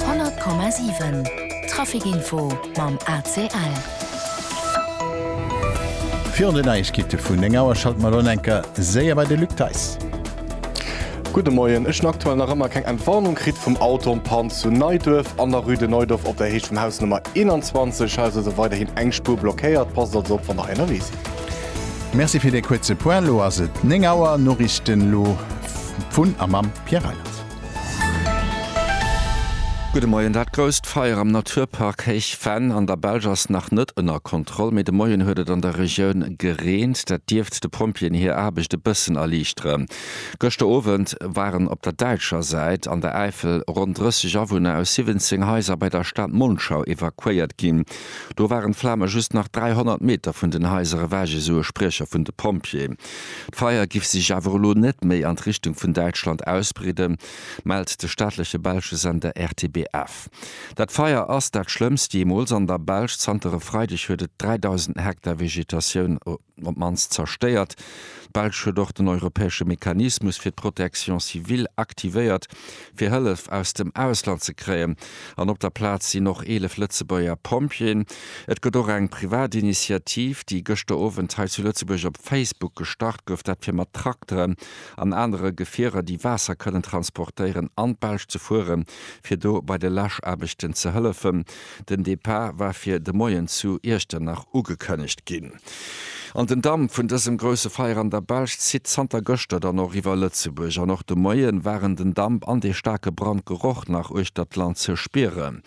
100,7 Trafic Info mam ACL. Virun den Neiegkeete vun 9 Auer schalte mer elo nach eng Kéier séier bei de Luc Theis. Gudde Moien. Ech hunn aktuell nach ëmmer keng Entwarnung kritt vum Auto en panne zu Neiduerf an der Rue de Neudorf op der Heescht vum Haus Nummer 21. Hei ass also weiderhin eng Spuer blockéiert. Passt also op wann der hei ënnerwee sidd. Merci fir dee kuerze Point. Elo ass et 9 Auer. Noriichten elo vun a mam Pierre Reyland. Gudde Moien. Dat grousst Feier am Naturpark Héich Venn an der Belsch ass nach net ënner Kontroll, mee de Moien huet et an der Regioun gereent. Dat dierft de Pompjeeën hir Aarbecht e bëssen erliichteren. Gëschter Owend waren op der däitscher Säit an der Äifel ronn 30 Awunner aus 17 Haiser bei der Stad Monschau evakuéiert ginn. Do waren d'Flame just nach 300 Meter vun den Haiser ewech, esou e Spriecher vun de Pompjeeë. D'Feier giff sech awer elo net méi an d'Richtung vun Däitschland ausbreeden, mellt de staatleche belsche Sender RTBF. Dat Feier ass dat schlëmmst jeemools an der Belsch. Zanter e Freideg huet et 3.000 Hektar Vegetatioun op d'mannst zerstéiert. D'Belsch huet och den europäesche Mechanismus fir d'Protection civile aktivéiert, fir Hëllef aus dem Ausland ze kréien an op der Plaz sinn och 11 Lëtzebuerger Pompjeeën. Et gëtt och eng privat Initiativ, déi gëschter Owend hei zu Lëtzebuerg op Facebook gestart gouf, dat fir mat Trakteren an anere Gefierer, déi Waasser kënnen transportéieren, an d'Belsch ze fueren, fir do bei de Läschaarbechten ze hëllefen. Den Depart war fir de Moien zu Iechternach ugekënnegt ginn. An den Damp vun dësem grousse Feier an der Belsch zitt zanter gëschter dann och iwwer Lëtzebuerg an och de Moie waren den Damp an dee staarke Brandgeroch nach uechter d'Land ze spieren.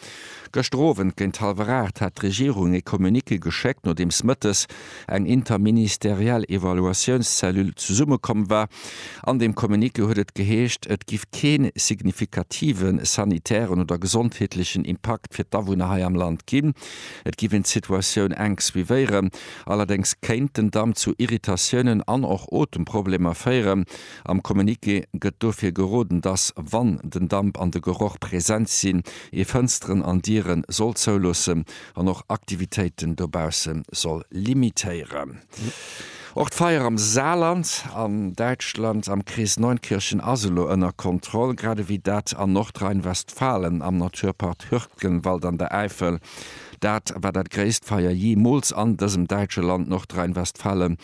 Gëschter Owend géint hallwer 8 hat d'Regierung ee Communiqué geschéckt, nodeems mëttes eng interministeriell Evaluatiounscellule zesummekomm war. An deem Communiqué huet et geheescht, et giff kee signifikative sanitären oder gesondheetlechen Impakt fir d'Awunner hei am Land ginn. Et giff een d'Situatioun enk suivéieren, allerdéngs kéint den Damm zu Irritatiounen an och Otemproblemer féieren. Am Communiqué gëtt dofir geroden, dass, wann den Damp an de Geroch present sinn, ee Fënsteren an Diere soll zouloossen an och Aktivitéiten dobausse soll limitéieren. Och d'Feier am Saarland an Däitschland am Krees Neunkirchen ass elo ënner Kontroll, grad ewéi dat an Nordrhein-Westfalen am Naturpark Hürtgenwald an der Äifel. Dat war dat gréisst Feier jeemools an dësem däitsche Land, Nordrhein-Westfalen,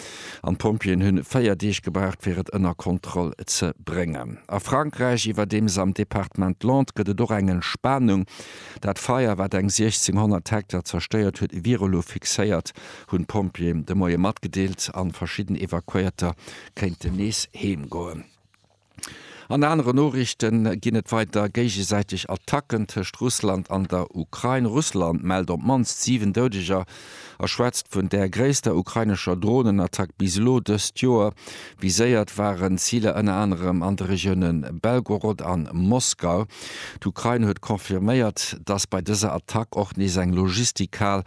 an d'Pompjeeën hunn 4 Deeg gebraucht, fir et ënner Kontroll ze bréngen. A Frankräich, iwwerdeems am Departement Landes, gëtt et och eng Entspanung. Dat Feier, wat eng 1.600 Hektar zerstéiert huet, wier elo fixéiert hunn d'Pompjeeën de Moie matgedeelt an verschidden Evakuéierter kéinten nees heem goen. An anere Noriichten ginn et weider géigesäiteg Attacken tëscht Russland an der Ukrain. Russland mellt op d'mannst 7 Doudeger a schwätzt vun der gréisster ukrainescher Dronenattack bis elo dëst Joer. Viséiert waren d'Ziler ënner anerem an de Regioune Belgorod an Moskau. D'Ukrain huet confirméiert, datt bei dëser Attack och nees eng Logistikhal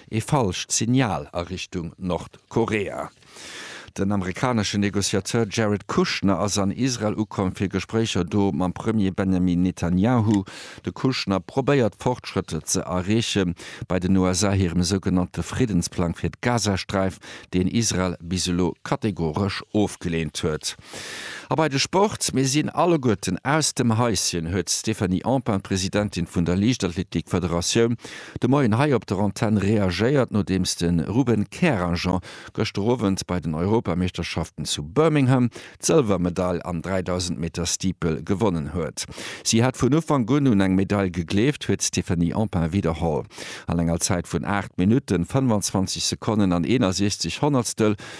Ee falscht Signal a Richtung Nordkorea. Den amerikaneschen Negociateur Jared Kushner ass an Israel ukomm fir Gespréicher do mam Premier Benjamin Netanyahu. De Kushner probéiert Fortschrëtter ze erreeche bei den USA hirem sougenannte Friddensplang fir d'Gazasträif, deen Israel bis elo kategoresch ofgeleent huet. A bei de Sport, Mir sinn alleguerten aus dem Häischen, huet d'Stéphanie Empain, d'Presidentin vun der Liichtathletik-Federatioun, de Moien hei op der Antenn reagéiert, nodeems de Ruben Kerajan gëschter Owend bei den Europameeschterschaften zu Birmingham d'Sëlwermedail am 3.000 Meter Steeple gewonnen huet. Si hätt vun Ufank un un eng Medail gegleeft, huet d'Stéphanie Empain widderholl. An enger Zäit vun 8 Minutten, 25 Sekonnen an 61 Honnertstel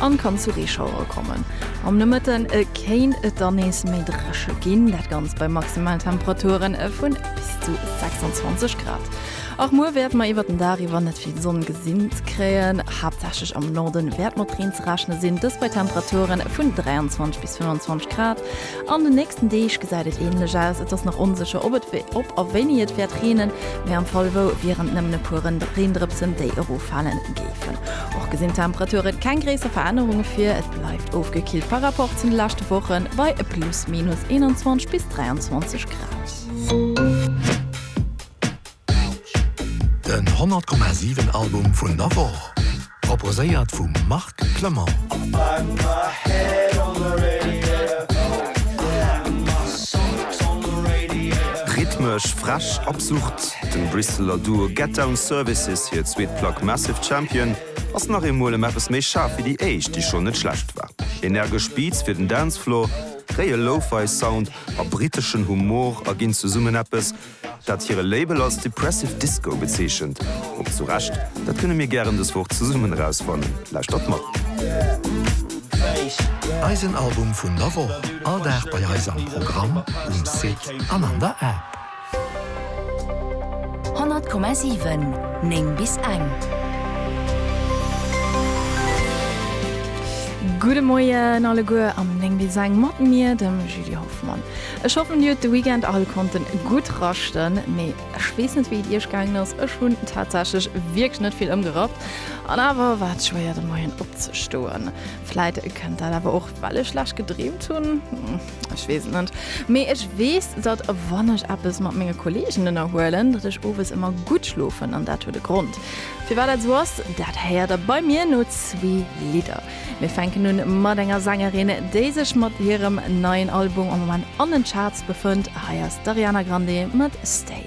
an kann zu Reeschauere kommen. Am Nomëtten kéint et dann nees méi drescheg ginn, dat Ganzt bei Maximaltemperaturen vu bis zu 26 Grad. Och muer wäerte mer iwwert den Dag iwwer net vill Sonn gesinn kréien. Haaptsächlech am Norde wäert mat Reen ze rechne sinn, dëst bei Temperaturen vun 23 bis 25 Grad. An den nächsten Deeg gesäit et änlech aus. Et ass nach onsécher, ob et ob a wéini et wäert reenen, mee am Fall wou wieren et nëmmen e puer Reendrëpsen, déi eroffalen géifen. Och gesinn d'Temperature keng gréisser Verännerunge vir, et bleift ofgekillt par Rapport zu de leschte Wochen bei plus minus 21 bis 23 Grad. Den 100,7 Album vun der Woch, proposéiert vum Marc Clement. Rhythmesch, frech, absurd, dem Brisseler Duo Get Down Services hir zweet Plack Massive Champion ass nach eemol ëm eppes méi schaarf wéi déi éischt, déi schonn net schlecht war. Energesch Beats fir den Dancefloor, réie Lo-Fi Sound a briteschen Humor erginn zesummen eppes, dat hire Label als Depressive Disco bezeechent, och zu Recht, dat kënne mir gären dës Woch zesummen erausfannen. Lauschtert mat. Eisen Album vun der Woch, all Dag bei eis am Programm, um Site an an der App. 100,7 9 bis eng. Gudde Moien alleguer am 9 bis eng mat mir, dem Julie Hoffmann. Ech hoffen dir hutt de Weekend all konnten gutt raschten, mee ech weess net wéi et iech gaangen ass, ech hunn tatsächlech wierklech net vill ëmgerappt an awer war et schwéier de Moien opzestoen. Vläit kënnt dat awer och well ech schlecht gedreemt hunn, ech weess et net. Mee ech weess datt wann ech eppes mat menge Kolleegen ënnerhuelen, datt ech owes ëmmer gutt schlofen an dat huet e Grond. Firwat dat esou ass, dat héiert der bei mir no zwee Lidder. Mir fänken un mat enger Sängerin, déi sech mat hirem neien Album am Moment an den Charts befënnt. Hei ass d'Ariana Grande mat Stay.